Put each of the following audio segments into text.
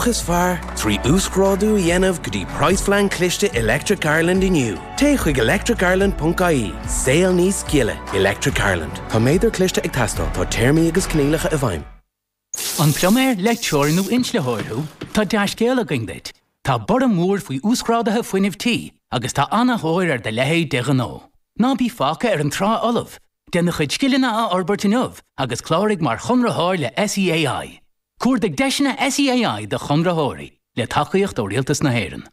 is fearr, trí uasghrádú a dhéanamh go dtí praghasphlean cliste Electric Ireland inniu. Téigh chuig electricireland ponc ie, saol níos gile! Electric Ireland. Tá méadar cliste ag teastáil, tá téarmaí agus coinníollacha i bhfeidhm. An pluiméir, leictreoir nó inslitheoir thú? Tá dea-scéal againn duit! Tá borradh mór faoi uasghráduithe fuinnimh tí agus tá an-tóir ar do leithéid de ghnó. Ná bí fágtha ar an trá fholamh! Déan do chuid scileanna a fhorbairt inniu agus cláraigh mar chonraitheoir le SEAI. Cuardaigh deiseanna SEAI do chonraitheoirí le tacaíocht ó Rialtas na hÉireann.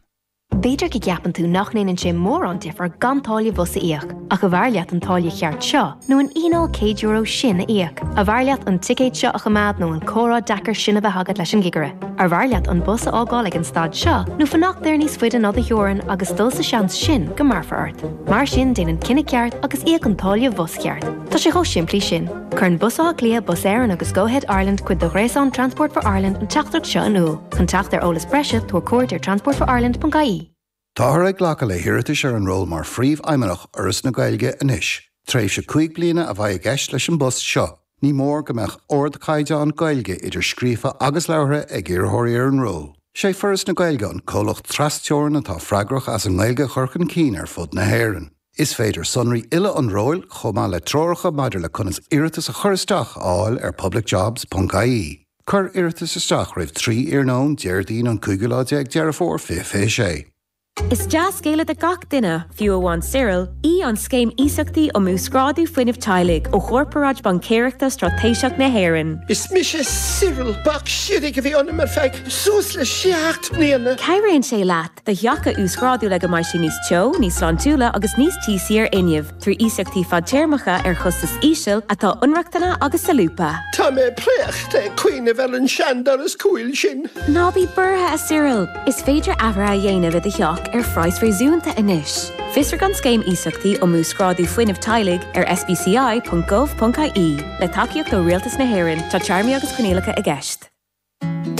B'fhéidir go gceapann tú nach ndéanann sé mórán difear gan táille bhus a íoc, ach arbh fhearr leat an táille cheart seo nó an fhíneáil €100 sin a íoc? Arbh fhearr leat an ticéad seo a choimeád nó an comhrá deacair sin a bheith agat leis an gcigire? Arbh fhearr leat an bus a fhágáil ag an stad seo nó fanacht air níos faide ná do theorainn agus dul sa seans sin go mbearfar ort? Mar sin déan an cinneadh ceart agus íoc an táille bhus cheart. Tá sé chomh simplí sin. Cuireann Bus Átha Cliath, Bus Éireann agus Go-Ahead Ireland cuid de ghréasán Transport for Ireland an teachtaireacht seo in iúl. Chun teacht ar eolas breise, tabhair cuairt ar transportforireland.ie. Táthar ag glacadh le hiarratais ar an ról mar Phríomhfheidhmeannach Fhoras na Gaeilge anois. Tréimhse cúig bliana a bheidh i gceist leis an bpost seo. Ní mór go mbeadh ardchaighdeán Gaeilge, idir scríofa agus labhartha, ag iarrthóirí ar an ról. Is é Foras na Gaeilge an comhlacht tras-Teorann atá freagrach as an nGaeilge a chur chun cinn ar fud na hÉireann. Is féidir sonraí uile an róil, chomh maith le treoracha maidir le conas iarratas a chur isteach, a fháil ar publicjobs.ie. Cuir iarratas isteach roimh 3 iarnóin Déardaoin an cúigiú lá déag Deireadh Fómhair 2026. Is dea-scéal do gach duine, fiú amháin Cyril, í an Scéim Iasachtaí um Uasghrádú Fuinnimh Teaghlaigh ó Chorparáid Baincéireachta Straitéiseach na hÉireann. Is mise Cyril. Bac shimhigh a bhí ionam ar feadh suas le seacht mbliana. Cabhraíonn sé leat. do theach a uasghrádú le go mbeidh sé níos teo, níos sláintiúla agus níos tíosaí ar fhuinneamh, trí iasachtaí fadtéarmacha ar chostas íseal atá inrochtana agus solúbtha. Tá mé préachta ag cuimhneamh ar an seandoras cúil sin. Ná bí buartha, a Cyril! Is féidir athruithe a dhéanamh i do theach ar phraghas réasúnta anois. Fiosraigh an Scéim Iasachtaí um Uasghrádú Fuinnimh Teaghlaigh ar sbci.gov.ie. Le tacaíocht ó Rialtas na hÉireann, tá téarmaí agus coinníollacha i gceist.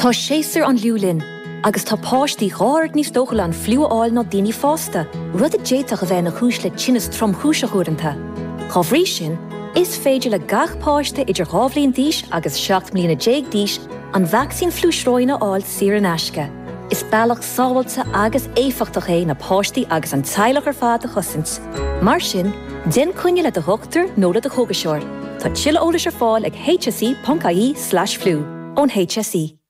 Tá séasúr an fhliú linn, agus tá páistí dhá oiread níos dóchúla an fliú a fháil ná daoine fásta, rud a d'fhéadfadh a bheith ina chúis le tinneas tromchúiseach uaireanta. Dá bhrí sin, is féidir le gach páiste idir dhá bhliain d'aois agus seacht mbliana déag d'aois an vacsaín fliú sróine a fháil saor in aisce. Is bealach sábháilte agus éifeachtach é na páistí agus an teaghlach ar fad a chosaint. Mar sin, déan coinne le do dhochtúir nó le do chógaiseoir. Tá tuilleadh eolais ar fáil ag hse.ie/flu ón HSE.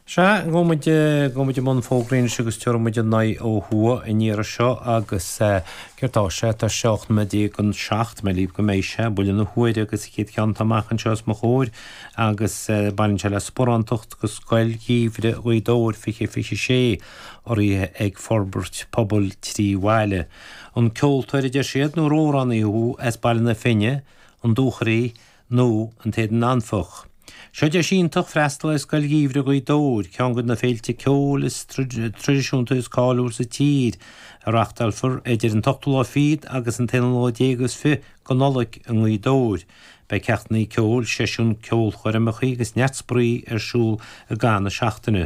Sea, go go muid i mbun fógraí anois agus tabharfaidh muid aghaidh ó thuaidh an iarraidh seo agus céard tá sé? Tá sé ocht nóiméad déag anseo againn go mbeidh sé buille na huaire agus chéad ceann atá amach anseo os mo chomhair agus baineann sé le sparántacht go scoil gheimhridh Ghaoth Dobhair fiche fiche sé. urraithe ag forbairt pobail Trí Bhaile. An ceoltóir a deir siad nó amhránaí thú as Baile na Finne, An Dúchoraidh nó an tÉadan Anfach. Seo deis iontach freastal ar Scoil Gheimhridh Ghaoth Dobhair, ceann de na féilte ceoil traidisiúnta is cáiliúla sa tír, a reachtáilfear idir an t-ochtú lá fichead agus an t-aonú lá déag is fiche go Nollaig i nGaoth Dobhair. Beidh ceachtannaí ceoil, seisiúin, ceolchoirmeacha agus neart spraoi ar siúl i gcaitheamh na seachtaine.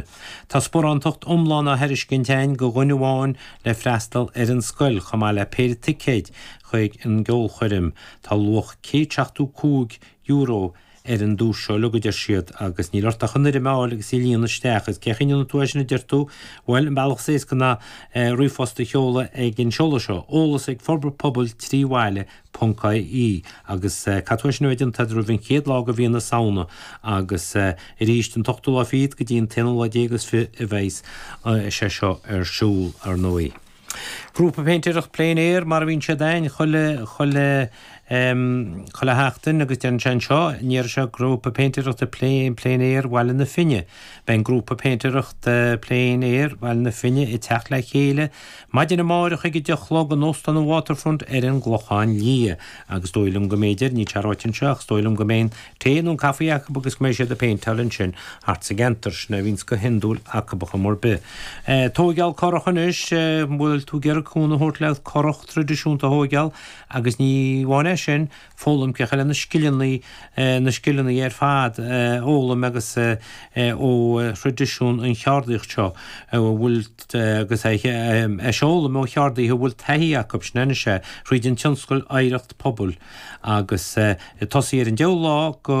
Tá sparántacht iomlán á thairiscint ann go dhuine amháin le freastal ar an scoil chomh maith le péire ticéid chuig an gceolchoirm. Tá luach €175 ar an duais seo uilig a deir siad agus níl agat ach an fhoirm a fháil agus í a líonadh isteach. Is cén chaoi a ndéanfaidh tú é sin a deir tú? Bhuel, an bealach is éasca ná ríomhphost a sheoladh ag an seoladh seo, Eolas ag Forbairt Pobail Trí Bhaile ponc ie Agus eh, caithfidh sin a bheith déanta agat roimh an chéad lá go mhí na Samhna agus eh, aríst an t-ochtú lá fichead go dtí an t-aonú lá déag is fiche a bheidh's sé seo ar siúl, ar ndóigh. Grúpa péintéireacht plein air mar a bhíonn siad a'ainn chuile, chuile em, chuile sheachtain agus tá sé anseo, an iarraidh seo grúpa péintéireachta plein, plein air Bhaile na Finne. Beidh an grúpa péintéireacht eh, plein air Bhaile na Finne ag teacht le chéile, Maidin amáireach ag a deich a chlog in Óstán an Waterfront ar an gClochán Liath. Agus is dóigh liom go mb'fhéidir, níl sé ráite anseo, ach is dóigh liom go mbeidh an tae nó an caife acu agus go mbeidh siad ag péinteáil ansin thart sa gceantar. Sin é a bhíonns go hiondúil acu ar chuma ar bith. Tóigeál currach anois, an bhfuil tú ag iarraidh cúnamh a thabhairt le currach tradisiúnta a thóigeál agus ní amháin é sin, foghlaim chuile na scileanna na scileanna ar fad a fhoghlaim agus ó thraidisiún an cheardaíocht seo a bhfuil agus a fhoghlaim ó cheardaithe a bhfuil taithí acu sin anois é thríd an tionscal oidhreacht pobail agus tosaí ar an 10ú lá go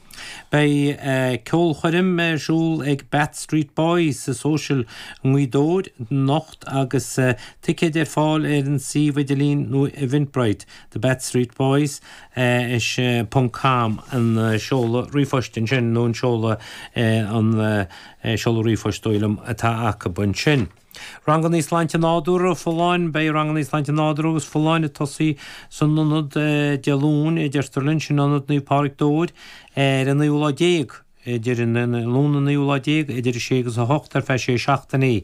Beidh ceolchoirm ar siúl ag Beat Street Boys sa Social i nGaoth Dobhair anocht agus ticéid ar fáil ar an suíomh idirlín nó Eventbrite do Beat Street Boys is.com an seoladh ríomhphoist ansin nó an seoladh an seoladh ríomhphoist is dóigh liom atá acu ansin. Ranganna Sláinte Nádúrtha, Folláin, Beidh Ranganna Sláinte Nádúrtha agus Folláin ag tosaí san Ionad Dé Luain, a deirtear linn, sin Ionad Naomh Pádraig Dobhair, ar an naoú lá déag, idir an Luan an naoú lá déag, idir a sé agus a hocht ar feadh sé seachtainí.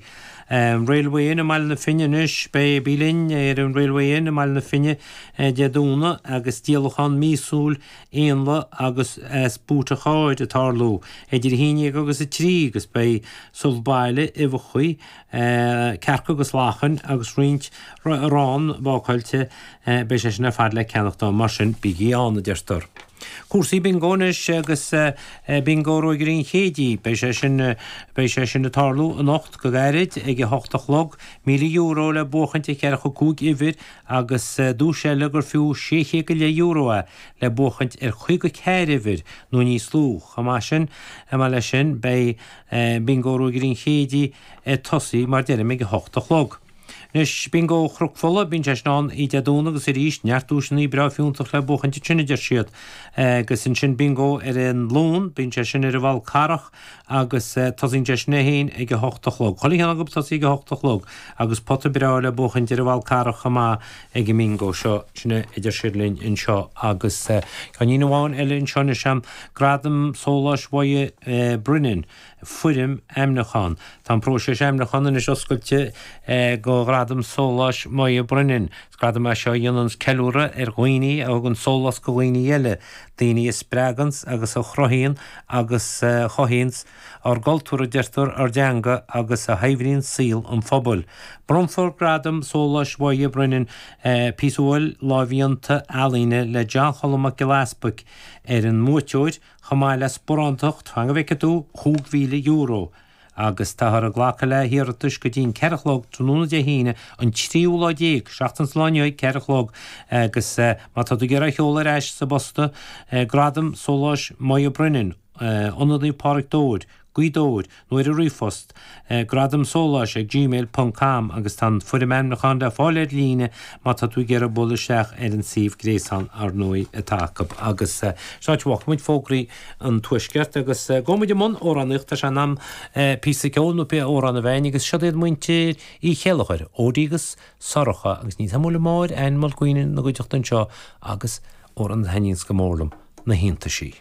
Railway Inn i mBaile na Finne, Anois beidh Bí linn ar an Railway Inn i mBaile na Finne Dé Domhnaigh agus díolachán míosúil éanlaith agus as búit an chairr a tarlú eidir a haon déag agus a trí agus beidh subh baile, uibheacha, cearca agus lachain agus roinnt arán bácáilte beidh sé sin ar fad le ceannacht ann mar sin bígí ann a deirtear. Cúrsaí Bingo anois agus Bingo Ruagairí an Chéididh beidh sé sin beidh sé sin a tarlú anocht go gairid ag a hocht a chlog, míle euro le buachaint ar cheathracha cúig uimhir agus duais eile gur fiú sé chéad go leith euro é, le buachaint ar chaoga ceathair uimhir nó níos lú. Chomh maith sin, maith leis sin, beidh Bingo Ruagairí an Chéididh ag tosaí, mar a deirim, ag a hocht a chlog. Anois, Bingo Chnoc Fola, bíonn sé sin ann Oíche Dé Domhnaigh agus arís, neart duaiseannaí breá fiúntach le buachaint ansin, a deir siad. Agus ansin Bingo ar an Luan, bíonn sé sin ar an bhFál Carrach, agus tosaíonn sé sin é héin ag a h-ocht a chlog. Chuile cheann acu ag tosaí ag a h-ocht a chlog agus pota breá le buachaint ar an bhFál Carrach chomh maith ag an mbingo seo. Sin é a deir siad linn anseo agus tá aon ní amháin eile anseo anois ann, Gradam Sóláis Moya Brennan, Foirm Ainmniúcháin. Tá an próiseas ainmniúcháin anois oscailte go Gradam Sóláis Moya Brennan. Is gradam é seo a dhéananns ceiliúradh ar dhaoine a thugann sólás go dhaoine eile. Daoine a spreaganns agus a chruthaíonn agus a chothaíonns ár gcultúr, a deirtear, ár dteanga agus a shaibhríonn saol an phobail. Bronnfar Gradam Sóláis Moya Brennan, píosa uathúil lámhdhéanta ealaíne le John Cholm Mac Giolla Easbuic, ar an mbuaiteoir, chomh maith le sparántacht, fan go bhfeice tú, €5,000. agus táthar ag glacadh le hiarratais go dtí'n ceithre chlog tráthnóna Dé hAoine an tríú lá déag, seachtain sa lá inniu ag ceithre a chlog, agus má tá tú ag iarraidh a sheoladh ar ais sa bposta, Gradam Sóláis Moya Brennan, Ionad Naomh Pádraig Dobhair, Gaoth Dobhair, nó ar an ríomhphost, gradamsóláis ag gmail ponc com, agus tá an foirm ainmniúcháin le fáil ar líne má tá tú ag iarraidh bualadh isteach ar an suíomh gréasáin, ar ndóigh, atá acu. Agus seo an áit a bhfágfaimid fógraí. an Tuaisceart agus go bhfuil muid i mbun amhránaíocht tá sé in am píosa ceoil nó pé amhrán a bheith a'inn agus siod iad muintir Uí Chéilleachair, Odí agus Sorcha agus ní tamuil mór Anne Mulqueen ina gcuideachta anseo agus amhrán a thaitníonns go mór liom na hiontaisí.